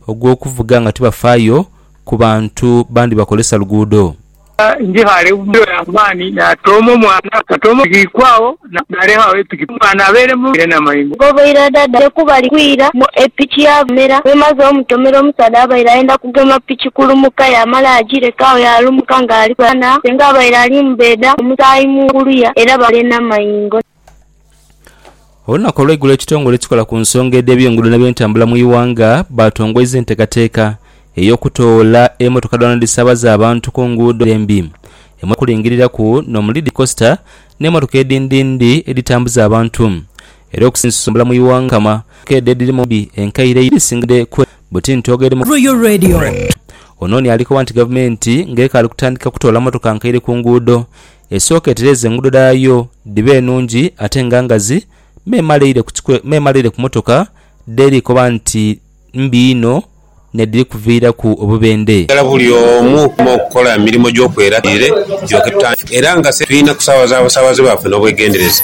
ogw'okuvuga nga tibafaayo ku bantu bandi bakozesa luguudo. Ndhighale obuvuyo ya maani, naatooma omwana, naatooma omuziikwa agho, naaleka agho epiki, omwana abeere mu ere n'amayengo. Oboire adadire ku bali kwira, epiki yaabamera. Bw'emaze omutomera, omusaadha abaire ayenda kugema piki kulumuka, yaamala yaagireka agho yaalumuka ng'ali kwera na senga abaire ali mu bbeeda, omusaayi mu nguluya era baale n'amayengo. Olunaku olweigulo ekitongole ekikola ku nsonga edh'eby'enguudo n'ebyentambula mu Iwanga baatongoiza enteekateeka ey'okutoola emotoka dhoona dhisiabaza abantu ku nguudo embi emuli okulingiriraku n'omu Lidi Kosita n'emotoka edhindindi edhitambuza abantu era okusinzia entambula mu Iwanga kama keedha edhiri mu mbi enkaire eyo edhisingadde kwe buti ntoogo eri mu Royal Radio. Onooni alikoba nti gavumenti ng'ekaali kutandika kutoola motoka nkaire ku nguudo, Esooka etereeze enguudo dhaayo dhibe nungi ate nga ngazi, m'emaleire ku motoka dh'eri koba nti mbi inho n'edhiri kuviiraku obubendhe. Ghala buli omu okuma okukola emirimo gy'okweraka eire gyokye tutandise era nga se tulina kusaabaza basaabaze baffe n'obwegendereza.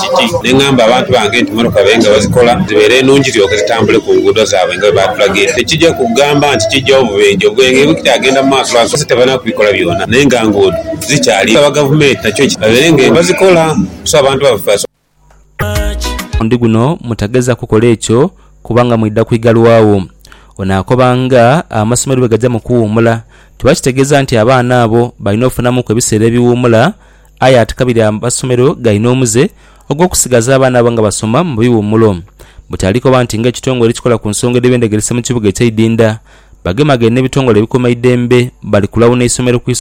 kiti. Ne ngamba abantu bange nti mmotoka babe nga bazikola zibeere nungi ziryoke zitambule ku nguudo zaabwe nga bwe baatulagira. Tekija kugamba nti kiggyawo bubenje, obwenhe bukyagenda mu maaso lwansonga bakazi tebalina kubikola byona naye nga nguudo zikyaliyo. Tusaba Gavumenti nakyo ekitwale babeere nga bazikola so abantu baffe basobole. Omulundi guno mutageza kukola ekyo kubanga mwidha kwigalwawo. Ono akoba nga amasomero bwe gaja mu kuwuumula, kiba kitegeeza nti abaana abo balina okufunamuku ebiseera ebiwuumula Aye ati kabiri amasomero galina omuze ogw'okusigaza abaana abo nga basoma mu biwummulo. Butali koba nti ng'ekitongole ekikola ku nsonga edh'eby'endegeresa mu kibuga ekya Idinda bagemagane n'ebitongole ebikuuma eidembe bali kulawuna isomero ku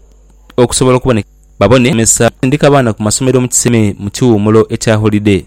okusobola okuboneka babone abasomesa okusindika abaana ku masomero mu kiseme mu kiwummulo ekya holide.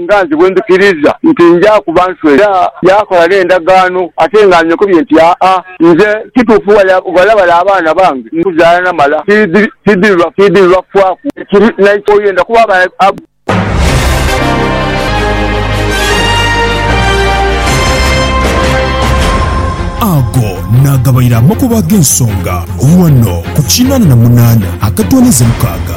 Nga nze bwe ndhikiriza nti nja kuba nswere, era yaakola n'endagaano ate nga anyokobye nti, Aa, nze kituufu ghalabale abaana bange nkuzaala namala tidhibafaaku ekiri n'eky'oyenda kuba aba. Ago naagabaire amakubo ag'ensonga ghano ku kinana na munana akatooneza mukaaga.